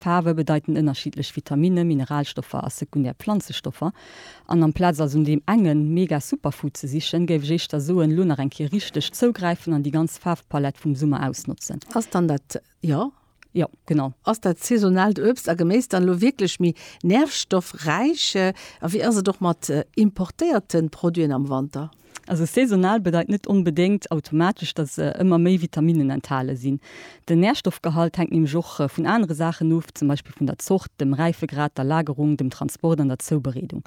Faarwe bedeiten ënnerschiddlech Vitaminne, Mineralstoffer a sekundär Planzestoffer. An amplaz also no deem engen mega Superfood ze sichen, géif ech éischter soen, elo nach eng Kéier richteg zougräifen an déi ganz Faarfpalett vum Summer ausnotzen. Ass dann dat, jo. Jo, genau. Ass dat saisonaalt Uebst a Geméis dann elo wierklech méi nährstoffräich? A wéi ass et och mat importéierte Produiten am Wanter? Also saisonal bedeit net onbedéngt automatesch, datt se ëmmer méi Vitaminnen enthale sinn. Den Närstoffgehalt hänkt nämlech och vun anere Saachen of, zum Beispill vun der Zort, dem Räifegrad, der Lagerung, dem Transport an der Zoubereedung.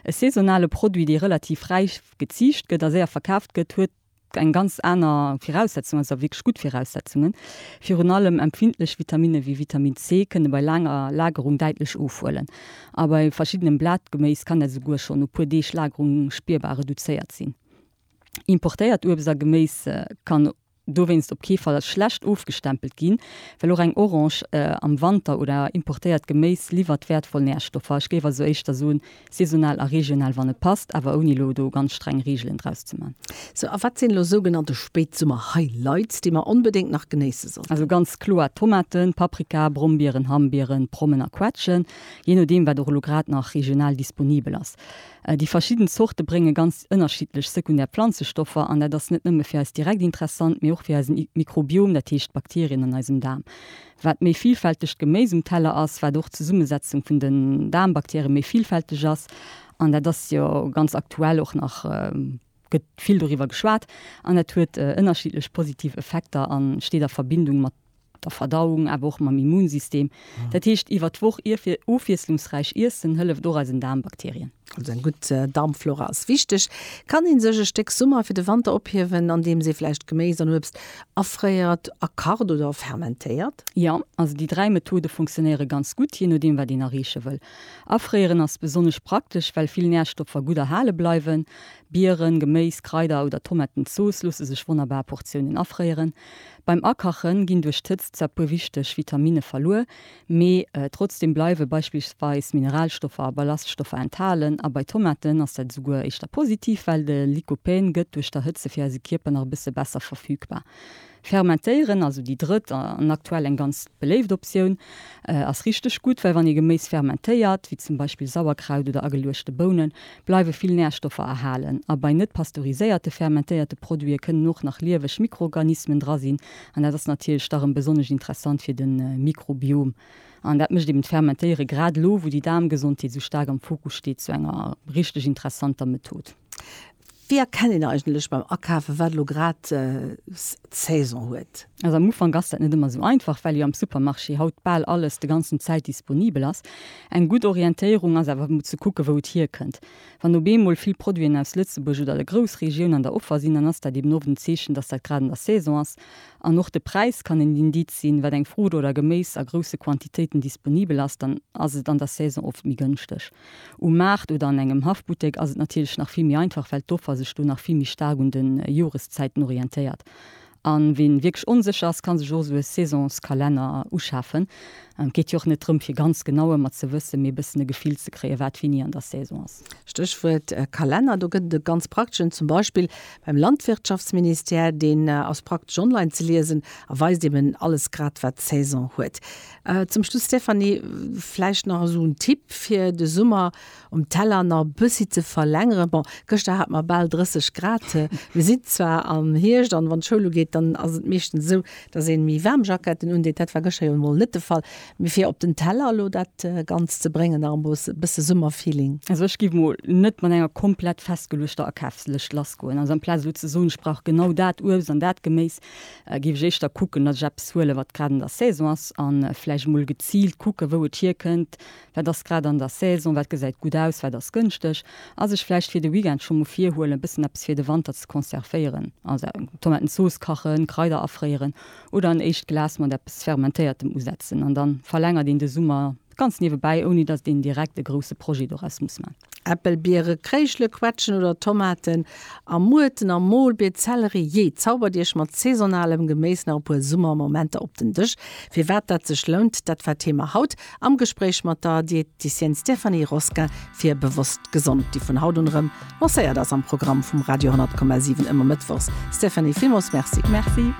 E saisonale Produit, dee relativ räif geziicht gëtt a séier verkaaft gëtt, huet eng ganz aner Viraussetzungen, a zwar wierklech gutt Viraussetzungen. Virun allem empfindlech Vitaminne wéi Vitamin C kënne bei laanger Lagerung däitlech ofhuelen. A bei verschiddenem Blatgeméis kann dat esouguer schonn no puer Deeg Lagerung spierbar reduzéiert sinn. Importéiert Uebst a Geméis kann dowéinst op kee Fall als schlecht ofgestempelt ginn, well och eng Orange am Wanter oder importéiert Geméis liwwert wäertvoll Närstoffer. Ech géif also éischter soen, saisonal a regional, wann et passt, awer ouni elo do ganz streng Reegelen draus ze man. Sou, a wat sinn elo sougenannte Spéitsummer-Highlights, déi mer onbedéngt nach genéisse Also sollten? ganz kloer Tomaten, Paprika, Brombieren, Hambieren, Prommen a Quetschen, jee nodeem wat och elo grad nach regional disponibel ass. Déi verschidden Zorte brénge ganz ënnerschiddlech sekundär Planzestoffer an dat ass net nëmme fir eis direkt interessant, mee och fir eisen Mikrobiom, dat heescht d'Bakterien an eisem Daarm. Wat méi villfältegt Geméis um Teller ass, wat och d'Zesummesetzung vun den Daarmbakterien méi villfälteg ass an dat ass jo ganz aktuell och nach, gëtt vill doriwwer geschwat an dat huet ënnerschiddlech positiv Effekter a steet a Verbindung mat der Verdauung, awer och mam Immunsystem. Dat heescht, iwwer d'Woch ofwiesslungsräich iessen hëlleft och eisen Daarmbakterien. Also eng gutt Daarmflora ass wichteg. Kann ee sech e Stéck Summer fir de Wanter ophiewen, andeems ee vläicht Geméis an Uebst afréiert, a kacht oder fermentéiert? Jo, also déi dräi Methode fonctionnéiere ganz gutt, jee nodeem wat een erreeche wëll. Afréieren ass besonnesch praktesch, well vill Närstoffer gutt erhale bleiwen. Bieren, Geméis, Kraider oder Tomatenzooss loosse sech wonnerbar a Portiounen afréieren. Beim Akache ginn duerch d'Hëtzt zwar e puer wichteg Vitaminne verluer, mee trotzdeem bleiwe beispillsweis Mineralstoffer a Ballaststoffer enthalen. A bei Tomaten ass dat esouguer éischter positiv, well de Lycopène gëtt duerch d'Erhëtze fir eise Kierper nach e bësse besser verfügbar. Fermentéieren, also déi drëtt an aktuell eng ganz beléift Optioun, ass richteg gutt, well wann ee Geméis fermentéiert, wéi zum Beispill Sauerkraut oder ageluechte Bounen, bleiwe vill Närstoffer erhalen. A bei net pasteuriséierte fermentéierte Produite kënnen och nach lieweg Mikroorganismen dra sinn an dat ass natierlech da rëm besonnesch interessant fir de Mikrobiom. An dat mécht eben d'Fermentéiere grad elo, wou déi Daarmgesondheet esou staark am Fokus steet, zu enger richteg interessanter Method. Wéi erkennt een eigentlech beim Akafen, wat elo grad Saison huet? Also am Ufank ass dat net ëmmer esou einfach, well jo am Supermarché haut bal alles de ganzen Zäit disponibel ass. Eng gutt Orientéierung ass awer emol ze kucken, wou et hierkënnt. Wann op eemol vill Produiten aus Lëtzebuerg oder der Groussregioun an der Offer sinn, dann ass dat eben oft en Zeechen, dass dat grad an der Saison ass. An och de Präis kann en Indiz sinn. Wat eng Fruucht oder Geméis a grousse Quantitéiten disponibel ass, dann ass et an der Saison oft méi gënschteg. Um Maart oder an engem Haffbuttek ass et natierlech nach vill méi einfach, well d'Offer sech do nach vill méi staark un de Joreszäiten orientéiert. A ween wierklech onsécher ass, kann sech och esou e Saisonskalenner uschafen. Et geet jo och net drëm, fir ganz genau ëmmer ze wëssen, mee e bëssen e Gefill ze kréien, wat wéini an der Saison ass. Stéchwuert Kalenner, do gëtt et e ganz prakteschen, zum Beispill beim Landwirtschaftsministère. Deen ass praktesch online ze liesen a weist eben alles grad, wat d'Saison huet. Zum Schluss, Stéphanie, vläicht nach esou en Tipp fir de Summer um Teller nach e bëssi ze verlängeren. Bon, gëschter hate mer bal 30 Grad, mir sinn zwar am Hierscht an wann d'Schoul ugeet, dann ass et meeschtens esou, dass ee méi waarm Jacketten undeet. Dat war gëschter jo emol net de Fall, mee fir op den Teller elo dat Ganzt ze bréngen, nach emol e bësse Summerfeeling. Also ech géif emol net mat enger komplett festgeluechter Akafslëscht lassgoen. Also amplaz elo ze soen, ech brauch genau dat Uebst an dat Geméis, Géif ech éischter kucken, datt ech eppes huelen, wat grad an der Saison ass, a vläicht emol geziilt kucken, wou et hierkënnt, wat ass grad an der Saison, wat gesäit gutt aus, wat ass gënschteg a sech vläicht fir de Weekend scho mol virhuelen, e bëssen eppes fir de Wanter ze conservéieren, also Tomatenzooss kachen, Kraider afréieren oder en éischt Glas mat eppes Fermentéiertem usetzen an da verlängert een de Summer. Ganz niewebäi, ouni datt een direkt e grousse Projet doraus muss man. Äppel, Biere, Kréischele, Quetschen oder Tomaten a Muerten am Molbeet, Zellerie, jee, zaubert Iech mat saisonalem Geméis nach e puer Summermomenter op den Dësch. Firwat dat sech lount, dat war Thema haut am Gespréich mat der Diététicienne Stéphanie Rosquin fir Bewosst Gesond, déi vun haut un erëm lancéiert ass am Programm vum Radio 10,7 ëmmer mëttwochs. Stéphanie, villmools Merci. Merci.